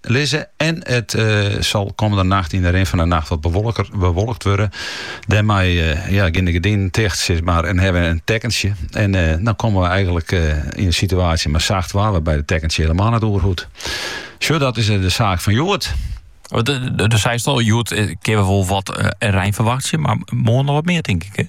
Lizze en it sil kommende nacht yn de rin fan de nacht wat bewolkt wurde. Dêrmei geane de gerdinen ticht, sis mar, en hawwe we in tekkentsje. En dan komme we eigenlik yn in situaasje mei sacht waar, wêrby't it tekkentsje hielemaal net oer hoecht. Sa, dat is de saak fan hjoed. Do seist al, hjoed kinne we wol wat rein ferwachtsje, mar moarn noch wat mear, tink ik.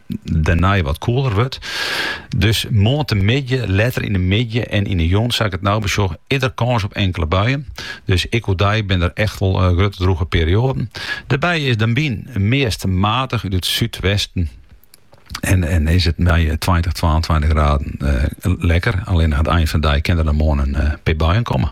dêrnei wat koeler wurdt. Dus moarntemiddei, letter yn de middei en yn de jûn sa ik it no besjoch earder kâns op inkele buien. Dus ek oerdei binne der echt wol eh, grutte drûge perioaden. Dêrby is de wyn meast matich út it súdwesten. En, en is it mei 20, eh, 22 graden eh, lekker. Allinnich aan it ein fan de dei kin der dan moarn in eh, pear buien komme.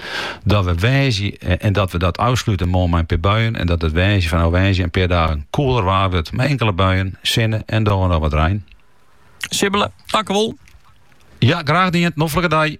Dat we woansdei, en dat we dat ôfslute moarn mei in pear buien en dat it woansdei fanôf woansdei in pear dagen koeler waar wurdt mei inkele buien, sinne en dan noch wat rein. Sibbele, tankewol. Ja, graach dien. Noflike dei.